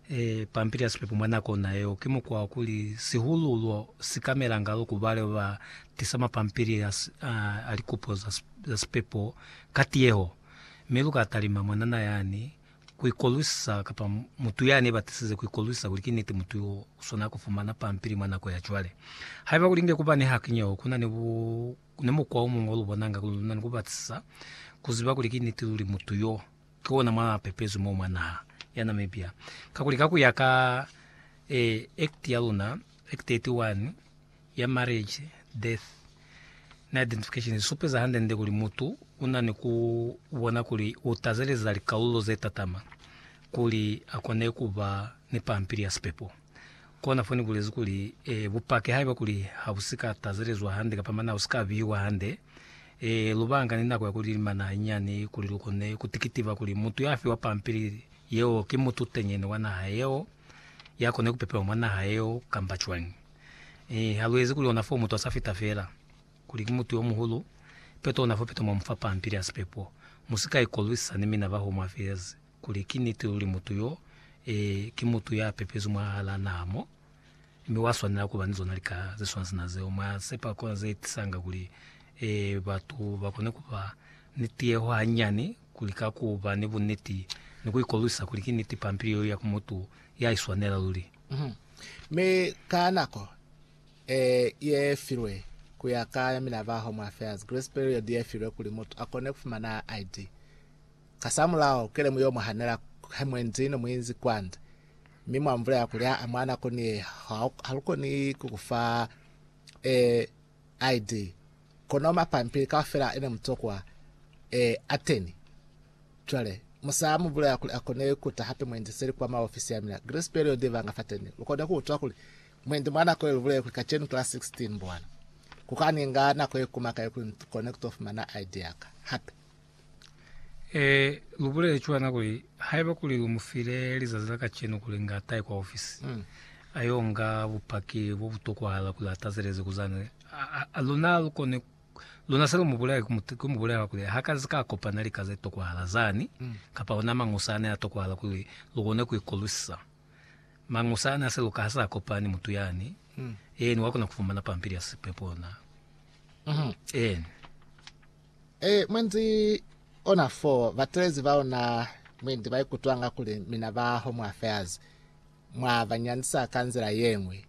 e, pampili ya sipepo mwa nako ona yeo, ki mukwa wa kuli sihululwo si kamelanga loko ba leo ba tisa mapampili a, a, a likupo za, za sipepo ka tiyeho. Mi lu ka talima mwanana yani ku ikolwisisa, kapa mutu yani ye batisize ku ikolwisisa kuli ki niti mutu yo u swanela ku fumana pampili mwa nako ya cwale. Haiba kuli inge ku ba ni hakinyeho, ku na ni, bu, ni mukwa o muñwi o lu bonanga kuli lu na ni ku batisisa ku ziba kuli ki niti luli mutu yo Ki ona mwa pepezwi mo mwa naha ya Namibia, kakuli ka ku ya ka e, Act ya luna, Act 31 ya Marriage, Death na Identification i supeza hande-nde kuli mutu u na ni ku bona kuli u tazeleza likalulo ze tatama kuli a kone ku ba ni pampili ya sipepo. Kona fo ni bulezi kuli, e, bupaki haiba kuli ha bu si ka tazelezwa hande kapa mana u si ka biwa hande, e, lu banga ni nako ya ku lilimana hañani kuli lu kone ku tikitiva kuli mutu ya fiwa pampili yeo ki mutu tenyene wa naha yeo, ya kone ku pepewa mwa naha yeo kamba cwañi. E, ha lu ezi kuli ona fo mutu a sa fita fela kuli ki mutu yo muhulu, peto ona fo peto mwa mu fa pampili ya sipepo. Mu si ka ikolwisa ni mina baho mwa fezi. kuli ki niti luli mutu yo e, ki mutu ya pepezwi mwahalaa naha mo, mi wa swanela kuba ni zona lika ze swana sina zeo. Mwa sepa kona ze tisanga kuli e, batu ba kone kuba ni tiyeho hanyani kuli ka ku ba ni buniti ni ku ikolwisa kuli ki niti pampili yeo ya ku mutu ya iswanela luli. Mi ka nako e, ye filwe ku ya ka ya mina ba Home Affairs, Grace Period ye filwe kuli mutu a kone kufumana ID. Kasamulaho, kelemu yo mwa hanela he mwe nzi ne mwi nzi kwa nzi, mi mwa mvula ya kulya a mwa nako ni ye, ha lu koni ku ku fa e ID. Kono mapampili kaufela ene muto kwa e Ateni. Cwale, musa mu bulaya kuli a kone ku ta hape mwendi seli kwa maofisi ya mina. Grace period i vanga fateni. Lu kone ku utwa kuli mwendi mwa nako ye lu buleye kuli kacenu ki la 16, mbowana. Ku ka ni nga nako ye kuma kai kuli ni kone ku to fumana ID ya ka hape. Ee, lu bulele cwana kuli, Haiba kuli lu mu file lizazi la kacenu kuli inge a tahe kwa ofisi, a yo nga bupaki bo bu tokwahala kuli a tazeleze kuzani, luna lu koni, luna se lu mu bulele ku mu bulela kuli ha ka ka kopana lika ze tokwahala zani, kapa ona mañusa ane a tokwahala kuli lu kone ku ikolusisa. Mañusa ane a si luka ha sa kopani mutu yani, eeni, wa kona ku fumana pampili ya sipepo ona. Eeni. Ee, mwendi ona fo batelezi baona mwendi baikutwanga kuli mina ba Home Affairs mwa ba nyandisa ka nzila yeñwi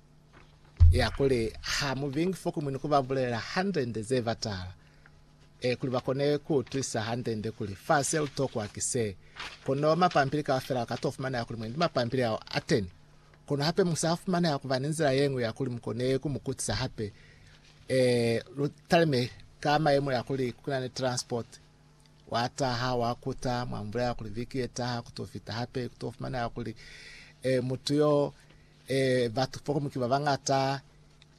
ya kuli ha mu bingi fo kumwini ku ba bulelela handende ze batala, ee, kuli ba kone ku utwisisa handende kuli fa se lu tokwa ki se. Kono mapampili kaufela a ka to fumaneha kuli mwendi mapampili ao a teni. Kono hape mu sa fumaneha ku ba ni nzila yeñwi ya kuli mu kone ku mu kutisa hape Ee, lu talime ka mayemo ya kuli ku na ni transport. Wa taha, wa kuta, mwa mu bulela kuli viki ye taha ku to fita hape, ku to fumaneha kuli eh, mutu yo eh, batu fokomu ki ba bangata,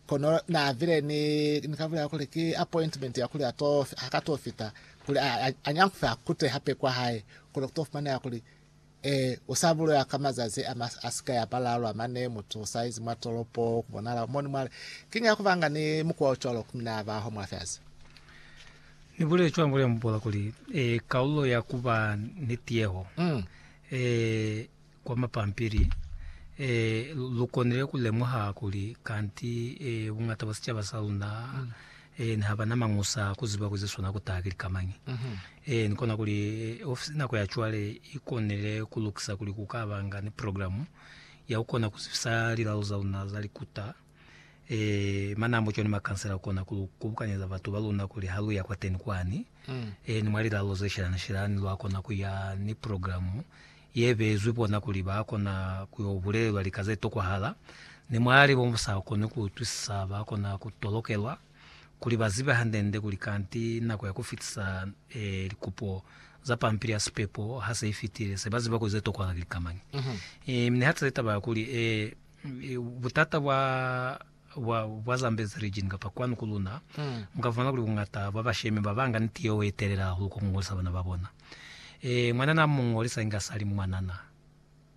kono na vile ni, ni ka bulela kuli ki appointment ya kuli ato, haka to fita kuli a, a, a nyankufe a kute hape kwa hae, kono ku to fumaneha kuli Ee, u sa bulela ka mazazi a, a si ka ya balalu a mane, mutu u sa izi mwa tolopo, ku bonala ku moni mwale. Kiñi ya ku banga ni mukwa o cwalo ku mina ba ho mwa fyazi? Ni bulele cwalo mwa Bubola kuli, e, kalulo ya ku ba ni tiyeho, Mm. e, kwa mapampili, e, lu konile ku lemuha kuli kanti e, buñata bwa sicaba sa luna Eeni, ha ba na mañusa a ku ziba kuli ze swana ku taha ki lika mañi. Eeni, kona kuli ofisi nako ya cwale i konile ku lukisa kuli ku ka ba nga ni programu ya ku kona ku zibisa lilalo za luna za likuta. Ee, manambo cwani makansela a kona ku lu kubukanyeza batu ba luna kuli ha lu ya kwateni kwani, eeni, mwa lilalo ze shelana-shelani, lwa kona ku ya ni programu ye beezwi bona kuli ba kona ku yo bulelelwa lika ze tokwahala, ni mwalali bo bu sa koni ku utwisisa ba kona ku tolokelwa kuli ba zibe hande-nde kuli kanti nako ya ku fitisa likupo za pampili ya sipepo ha se i fitile, se ba ziba kuli ze tokwahala ki lika mañi. Mi nihatise taba ya kuli butata bwa. bwa, bwa Zambezi region kapa kwanu ku luna, muka fumana kuli bungata bwa bashemi babanga niti yeo ye telela hahulu kwa ku ngolisa bana ba bona. E, mwanana a mu ngolisa inge a sa li mwanana.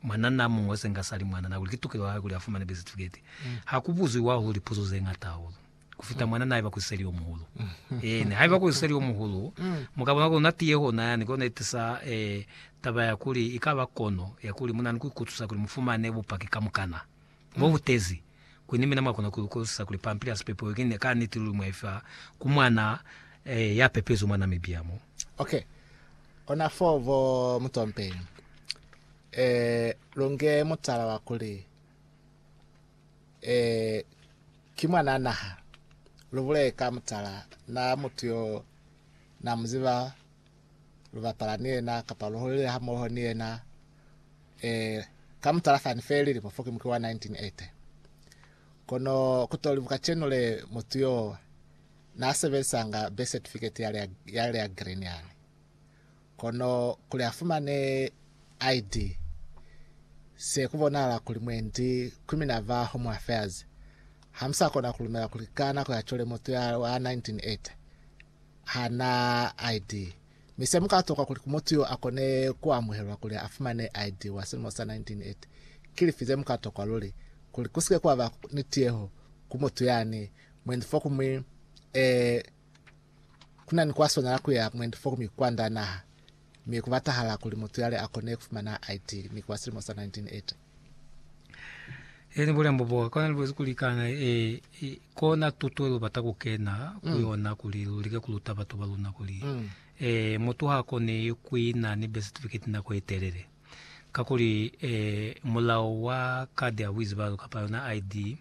Mwanana a mu ngolisa inge a sa li mwanana, kakuli ki tukelo ya hae kuli a fumane bisitifikeiti. Ha ku buziwi hahulu lipuzo ze ñata hahulu ku fita mwanana haiba ku siseli yo muhulu. Eena, haiba ku siseli yo muhulu, mu ka bona kuli luna tiye hona yani, ki yona ye tisa e, taba ya kuli ikaba kono ya kuli mu na ni ku ikutusa kuli mu fumane bupaki kamukana. Bo butezi kuli ni mina mwa kona ku lukolisisa kuli pampili ya sipepo yo ki ne ka niti luli mwa i fa ku mwana ya pepezwi mwa Namibia mo. Ok. Ona foo bo Mutompeni. Eh, lu nge mutala wa kuli, eh, ki mwana naha. Lu bulele ka mutala na mutu yo na mu ziba lu bapala ni yena, kapa lu holile hamoho ni yena. E, ka mutala fani fe lilimo fo ki muki wa 1980. Kono kutolibu kacenu le mutu yo na sebelisanga birth certificate yale ya, yale ya green yale. Kono kuli afumane ID, se kubonahala kuli mwendi ku minava Home Affairs hamusakona kulumela kuli ka nako ya cwale mutu ya wa 1980 ha na ID, mi se mu ka tokwa kuli ku mutu yo a kone ku amuhelwa kuli a fumane ID wa silimo sa 1980, ki lifi ze mu ka tokwa luli kuli ku si ke kwa ba ni tiyeho ku mutu yani mwendi fokuñwi e ku na ni kwa swanela ku ya mwendi fokuñwi kwa nda naha? Mi ku batahala kuli mutu yale a kone ku fumana ID mi ki wa silimo sa 1980. Eni bulembo bo kona libuzi kulikana e, e kona tuto lu bata ku kena ku mm. yona kuli lu like ku luta batho ba luna kuli mm. e mutu ha kone ku ina ni birth certificate nako e telele ka kuli e mulao wa card ya buizi ba lu kapa yona ID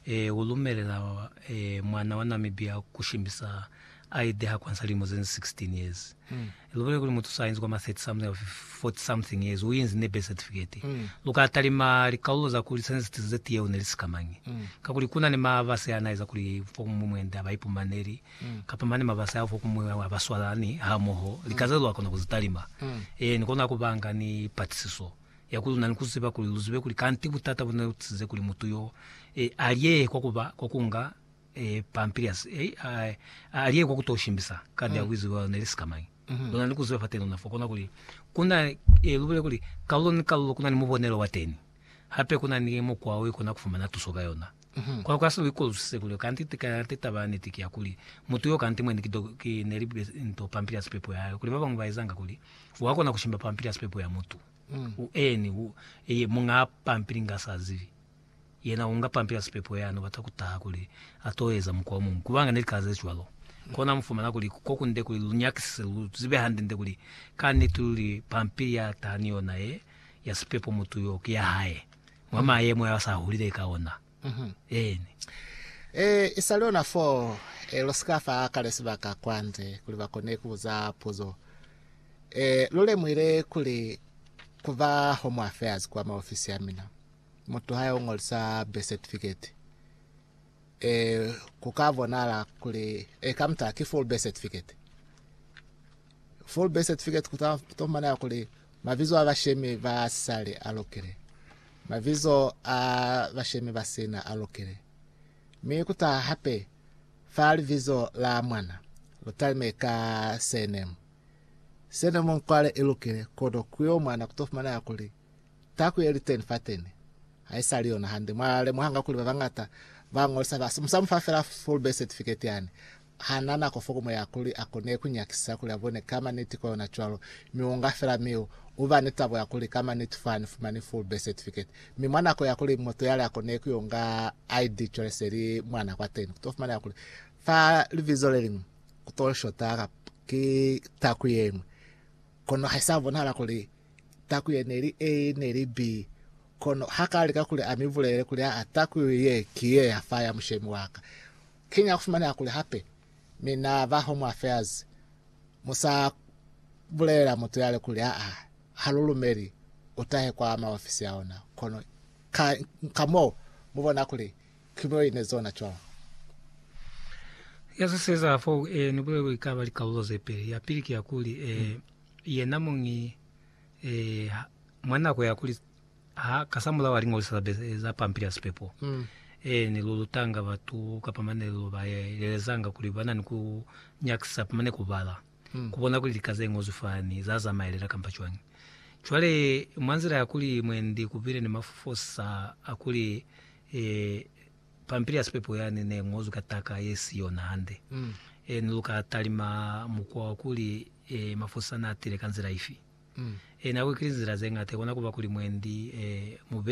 e, u lumelela e, mwana wa Namibia ku shimisa ID ha kwansa lilimo ze 16 years. Mm. Lu bole kuli mutu sa inzi kwa ma 30 something or 40 something years u inzi ne birth certificate. Mm. Lu ka talima likalulo za kuli sene sitize ze tiyeo ne li sikamañi. Mm. Kakuli kuna ni mabase ana eza kuli fo kumwi mwende aba ipumaneli mm. kapa mane mabase a fo kumwi aba swalani ha moho lika ze lu akona ku zi talima. Mm. E, ni kona ku banga ni patisiso. ya kuli lu na ni ku ziba kuli lu zibe kuli kanti butata bu ne lu tisize kuli mutu yo e alyehe kwa ku ba kwa ku nga e pampili ya si, e, a, a alyehe kwa ku to shimbisa kandi ya buizibi bwa luna ili sikamañi. Lu na ni ku ziba fateni luna fo kona kuli ku na, e, lu bulele kuli kalulo ni kalulo ku na ni mubonelo wa teni, hape ku na ni mukwa wo i kona ku fumana tuso ka yona. Kono ka se lu ikolwisise kuli kanti ti ka kanti taba ya niti ki ya kuli mutu yo kanti mwene ki do, ki ne li be nto pampili ya sipepo ya hae, kuli ba bañwi ba ezanga kuli wa kona ku shimba pampili ya sipepo ya mutu. Mm. U eni, u, eye munga pampili nga sa zibi. Yena unga pampili ya sipepo yani, ubata kutaha kuli ato eza mukwa omuñwi. Kubanga ne lika ze cwalo. Kona mufumana kuli kokunde kuli lu nyakisise, lu zibe hande nde kuli ka niti luli pampili ya taha ni yona ye, ya sipepo mutu yo, ki ya hae, mwa mayemo ao asa hulile ka ona. Eeni. E, i sa li ona fo, e, lu si ka fa kale sibaka kwande kuli ba kone ku buza puzo. E, lu lemuhile kuli ku ba Home Affairs kwa maofisi a mina, mutu ha yo ngolisa birth certificate, e, ku ka bonahala kuli, e, ka muta ki full birth certificate. Full birth certificate ku ta fumana kuli mabizo a bashemi ba sisale a lokile, mabizo a bashemi ba sina a lokile, mi ku ta hape fa libizo la mwana lu talime ka surname. Surname nkwale i lokile, kono ku yo mwana ku to fumana kuli Taku ye li teni fateni ha i sa li yona hande. Mwa lemuhanga kuli ba bañata ba ñolisa ba sa mu fa fela full birth certificate yani. Ha na nako fo ku mu ya kuli a kone ku nyakisisa kuli a bone ka maniti ko yona cwalo. Mi u nga fela mi u ba ni tabo ya kuli ka maniti fa ni fumani full birth certificate. Mi mwa nako ya kuli mutu yale a kone ku yo nga ID cwale se li mwana kwateni. Ku to fumaneha kuli fa libizo le liñwi ku to shota ki taku ye ñwi. Kono ha i sa bonahala kuli Takuye neli A neli B, kono hakalika kuli amibulele kuli aa takuye ye ki ye ya fa ya mushemi waka. Kiñi akufumaneha kuli hape mi na ba Home Affairs musa bulelela mutu yale kuli aa halulumeli utahe kwa maofisi a ona, kono ka, ka moo mubona kuli kibuyo ine zona cwalo. Yazwiseza fo e ni bulelwe ikaba likaulo zepeli. Yapili ki yakuli, e, yena muñi eh, mwa nako ya kuli ha ka sa mulao alingozi za, za pampili ya sipepo mm. eh, ni lulutanga batu kapa mane lu ba elezanga kuli bana ni ku nyakisa pamane kubala mm. kubona kuli lika ze ngozwi fani za zamaelela kampa cwani cwale mwa nzila ya kuli mwendi kupile ni mafosa a kuli eh, Pampili ya sipepo yani ne ngozwi ka taka ye si yona hande. E, ni lu ka talima mukwa wa kuli e, mafosisa na tile ka nzila ifi? E, nako ki linzila ze ngata ikona kuba kuli mwendi e, mu be.